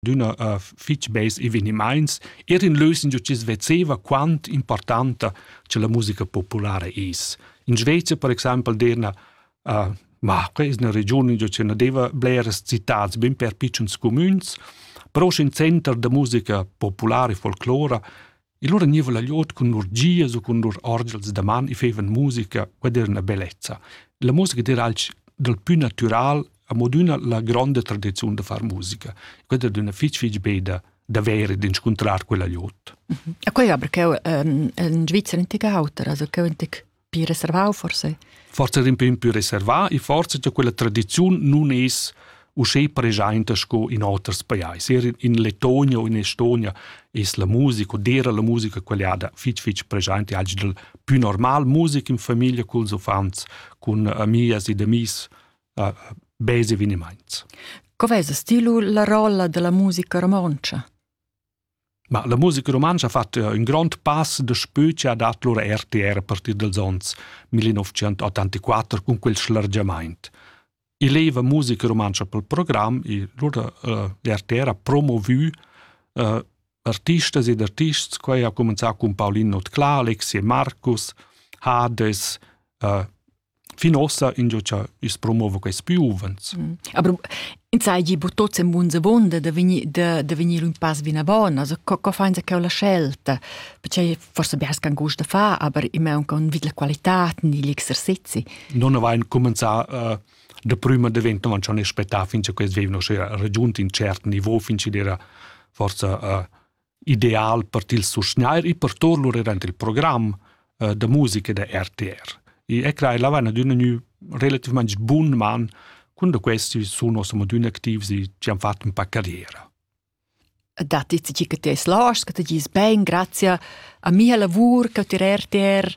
d'üna fich beis evenimaints eir in leusingia chi's vezeva quant importanta cha la musica populara es. In Svezia per exaimpel d'eirna uh, ma que es üna regiun ingio ch'eu na deva bleras citats bin per pitschens cumüns, però schi in center da musica populara e folclora E lura gniva la gliod cun lur gias u cun lur orgels da man e feivan musica ed era üna bellezza. La musica d'eira alch dal pü natüral amo adüna la gronda tradiziun da far musica. Quella ed üna fich fich beda davvero d'inscuntrar quella gliod. E quella aber ch'eu in Svizzer in tig auter, also ch'eu in tig più reservau forse? Forse un pin più reservà e forse che quella tradizione non es uscè presente sco in oters pajais. Er in Letonia o in Estonia es la musica, dera la musica quellada fitch fitch presente, algi del più normal musica in famiglia culs uffants, cun amias ed amis, uh, base eveniments. Cov'è lo stilo la rolla della musica romoncia? Ma la musica rumantscha ha fatg ün grond pass daspö chi ha dat lur RTR a partir dals ons 1984 cun quel schlargiamaint. I leva musica rumantscha pel program, i lur l'RTR ha promovü uh, artistas ed artists, quai ha cumanzà cun Paulin Notclà, Alexi e Marcus, Hades, uh, fin ossa ingio cha i's promova quaists pü uvants. Mm. Aber in sai gi bu tots en bunza bonda da venir da, da venir un pass bina bon, also co, co fain sa cheu la scelta? Perché forse bers can gust da fa, aber immer un con vid la qualità ni l'exercizi. Non avain comenzà uh, da prima diventa man schon spettà fin che quels vivno sera raggiunti in cert niveau fin che era forse uh, ideal per til susgnair e per tor lur durant il program uh, da musica da RTR. E e crai la vana d'una nu relativament bun man quando questi sono siamo adina activs e ci hanno fatto un po' carriera. Datti ci che ti hai slash, che ti gis ben, grazie a mia lavur, che ti RTR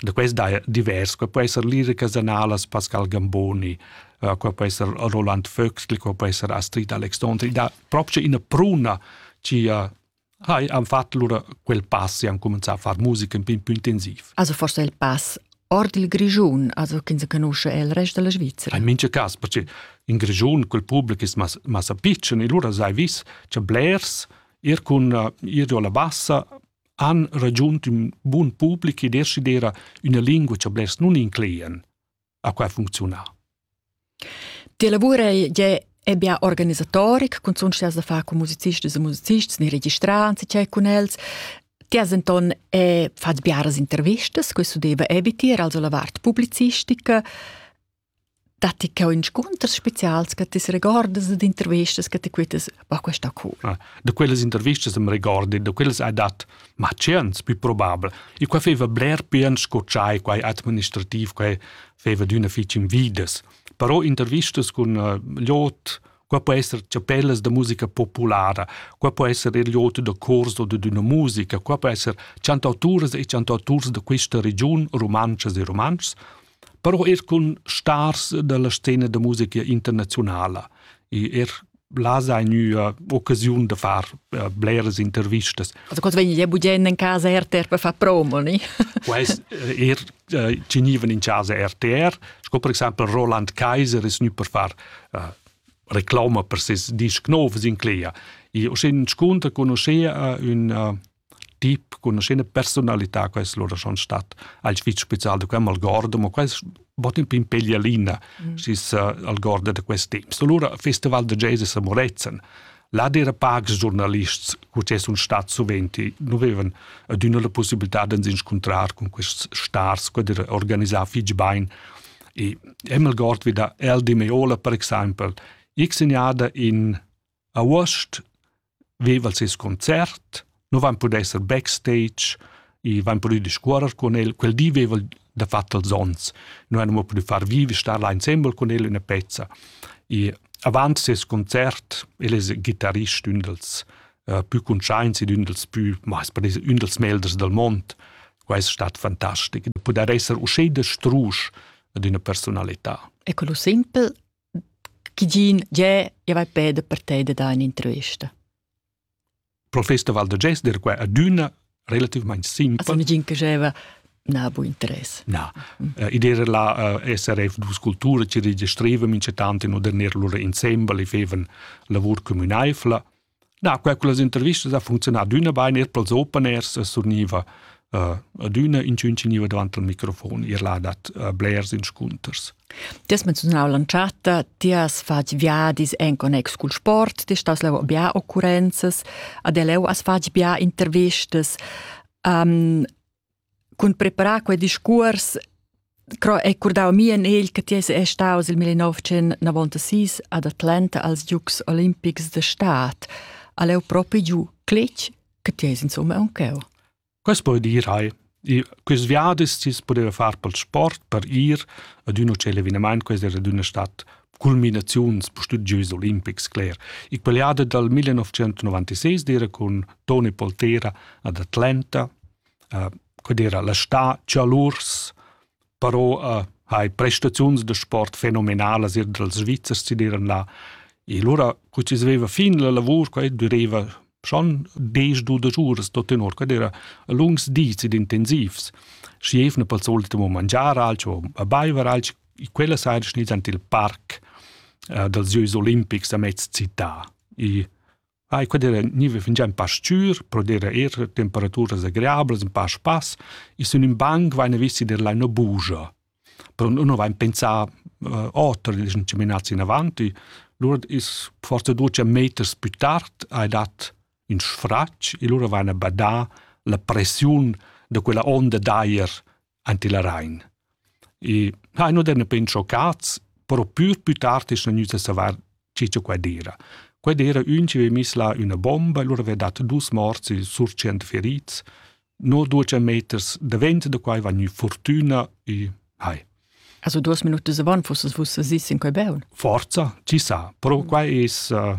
Da quest daja divers. Qua po esser Lida Casanalas, Pascal Gamboni, uh, qua po esser Roland Vöxtl, qua po esser Astrid Alexandri. Da proprio ina pruna ci uh, hai han fatto lura quel pass e han cominciato a fare musica un po' più intensiv. Also forse il pass ord il Grigiun, also che si conosce il resto della Svizzera. In mince cas, perché in Grigiun quel pubblico è mas, massa piccolo e allora sai vis c'è blers, ir con uh, ir alla bassa han ragiunt ün bun public e decidera üna lingua cha blers nun inclean. A qua funcziuna. Ti lavur è ebbia organisatoric, cun sun da far con musicisti e musicisti, ne registrants e con els. Ti has enton è fat biaras intervistas, questo deve eviter, also la vart publicistica. datti che inscunters spezials che ti regordas ed intervistas che ti quittas, ma questa cool. Ah, da quelle interviste mi ricordi, da quelle hai dat, ma tschient più probabile. E qua feva bler pian scocciai, quai administrativ, quai feva d'una fitch invidas. Però intervistas con uh, lot, qua può essere chapellas da musica populara, qua può essere il lot da corso di una musica, qua può essere cantautoras e cantautoras da questa region, romances e romances, però er cun stars dalla scena da musica internazionala e er là sai gnüa occasiun da far uh, bleras intervistas. Also quando vegni budgendo in casa RTR per far promo, ni? Quest eh, er uh, ci gnivan in casa RTR, sco per esempio Roland Kaiser ist nu per far uh, reclama per ses disc nov in Clea. E o sin sconta conoscea uh, un uh, Ti conoscina personalità che es lura schon stat alch fich special da quai m'algord, ma quai bod ün pin peglialina mm. schi's algorda da quest temp. Allura Festival da jazz a Morezen, là d'eira pacs giurnalists co che sun stats suvent. Nu vevan adüna la possibilità d'ans inscuntrar cun quists stars, quai d'eira organisà fich bain. E m'algord vi da El di Meola per exaimpel, x gnada in A Uost veva'l seis concert, nu vain pudü esser backstage, i vain pudü discuorrer cun el. Quel di veva'l dafatt els ons. Nu hain amo pudü far vivi, star là insembel cun el üna pezza. I avant seis concert el es ghitarist ün dals uh, pü cuntschaints ed ün dals pü, ma es per es ün dals melders dal mond. Quai es stat fantastic. Pudair esser uschè da strusch ad üna persunalità. E quello simpel Tgigin, gie, jeu vai peda per te da dar un'intervista. Professor Val da Gester qua adüna relativmain simpel. Also nigin che jeva na bu interess. Na, uh, id era la uh, SRF dus Cultura ci registreva mincetant in oder lura insembel e fevan lavur communaifla Na, quai con las intervistas ha funzionà adüna bain, eir pels open airs surgniva uh, adüna inchün gniva davant al microfon, ir là dat uh, blers inscunters. Ti has menzionau l'entschatta, ti has fatg viadis en connex cul sport, ti stas leu bia occurrenzas, ad leu has fatg bia intervistas. Um, cun preparar quei discuors cro è curdau mi en egl che ti è staus il 1996 ad Atlanta als Dukes Olimpics de Staat all'eu propi giu clic che ti es insomma un cheu Quas poi dir hai e quis viadis tis poteva far pel sport per ir ad uno cel eveniment quais era d'una stat culminaziuns studios olimpics cler e quell'ada dal 1996 d'era con Tony Poltera ad Atlanta uh, era la sta chalurs però uh, hai prestaziuns da sport fenomenalas ir dals Svizzers si diran là e lura cu ci sveva fin la lavur quai dureva schon des du da giuras tot tenor quai era lungs dis ed intensivs schi evna pel solito mo mangiar alch o a baiver alch quella sera schniz ant il parc uh, dals Giois Olimpics a mezz città e Ai quedera niva fingià ün pa s-chür, pro dir eir temperaturas agreablas, ün pa spass, i sun ün banc vaina visti der là üna bugia. Però nun vain pensà uh, oter, dischan chaminats inavant. Lura is forsa duos meters pü tard hai dat ün sfratg e lura vaina badà la pressiun da quella onda d'ajer ante la Rhein. E ha no den pen schoccats, però pür più tard es gnüta savar che cha quai d'eira. Quai d'eira ün chi aveva miss là üna bomba e lura aveva dat dus morts e sur tschient ferits. No duos meters davent da quai va gnü fortüna e hai. Also duas minute se van fusses vus si sin quei beun? Forza, ci sa, però mm. quai es uh,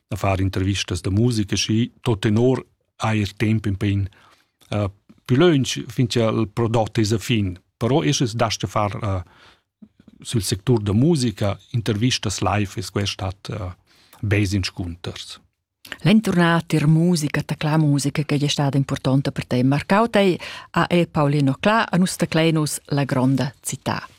da far intervistas da musica schi tot tenor eir temp in pin uh, più lönch finché il prodotto es a fin però es das da far uh, sul sector da musica intervistas live es questat uh, bes inscunters L'entornata ir musica, ta cla musica che è stata importante per te. Marcau te a e Paolino Cla a nus Clenus la gronda città.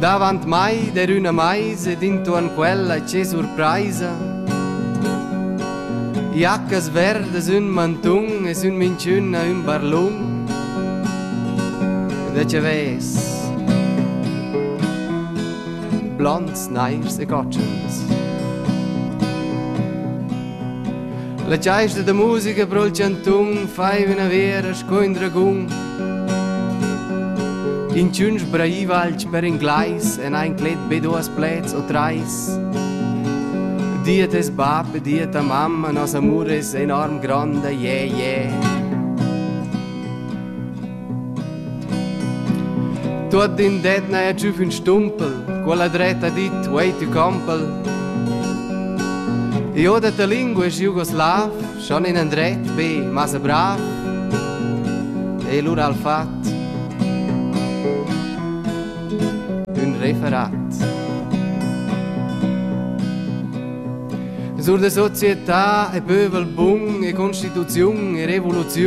Davant mai der üna meisa ed intuorn quella che surpraisa. Jaccas verdas ün mantun es ün minchüna ün barlun. Da che ves? Blonds, nairs e gotschens. La chaista da musica pro il chantun fai üna vera sco in dragun. Inchün sbraiva alch per inglais e n'ha inclet be duos pleds o trais. Dia tes bap e dia ta mamma, nos amur es enorm gronda, yeah, yeah. Tuot in det n'haja giù fin stumpel, quella dretta dit wait you compel. Io da ta lingua es jugoslav, Schon in andret be massa brav e lura al fat ün referat. Sur de società e pövel bun e constituziun e revoluziun